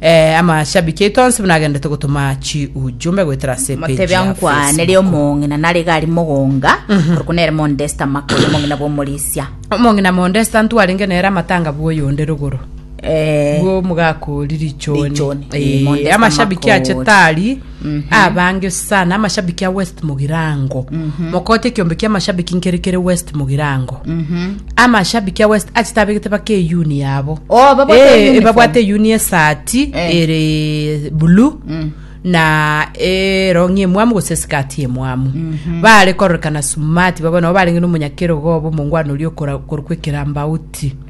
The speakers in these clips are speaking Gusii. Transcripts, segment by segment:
Eh, amashabiki aito onsi buna agendete gotoma chiujumbe goetera ase page motebe ya nkwanere Facebook. omong'ina nare gari mogonga korokwa nere mondesta makori omong'ina bw'omorisia omong'ina mondesta ntwarenge nere amatanga bw'oyonde rogoro Eh, bwo omogakori richoni Richoni, eh, Eh, Mondesta amashabiki ache Makori. tari Abange sana amashabiki a West Mugirango. Mokoote ekiombe kia amashabiki nkere kere West Mugirango. Amashabiki a West achete abegete bake eyuni yabo. Oh, babwate Eh, uniform. eh, babwate eyuni esati Eh. ere blue na erongi emwamu gose esikati emwamu bare kororekana sumati babo nabo barenge nomonyakero gobo omongwana oria okora- okorokwa ekerambauti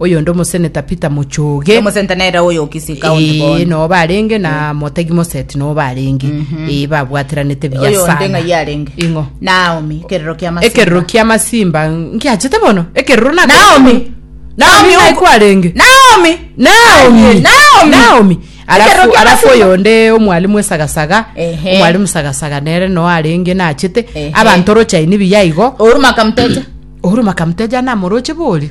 Oyonde omoseneta Peter Muchoge. Omosenta nere oyo Kisii County Ee, bono. noo barenge na motegi moseti noo barenge Ee, babwateranete buya Oyonde sana ng'ai arenge. ing'o Naomi, kerero kia masimba. ekerero kia masimba nkiachete bono ekerero nako- Naomi. Naomi Naomi naye uko- kwarenge Naomi. Naomi. Aye, Naomi. Naomi. Ekerero Alafu, kia alafu masimba. oyonde omwalimu esagasaga Ehe. omwalimu sagasaga nere no arenge nachete Ehe. abanto rochaini biya igo Uhuru Makamteja. ohuru makamuteja namoroche borio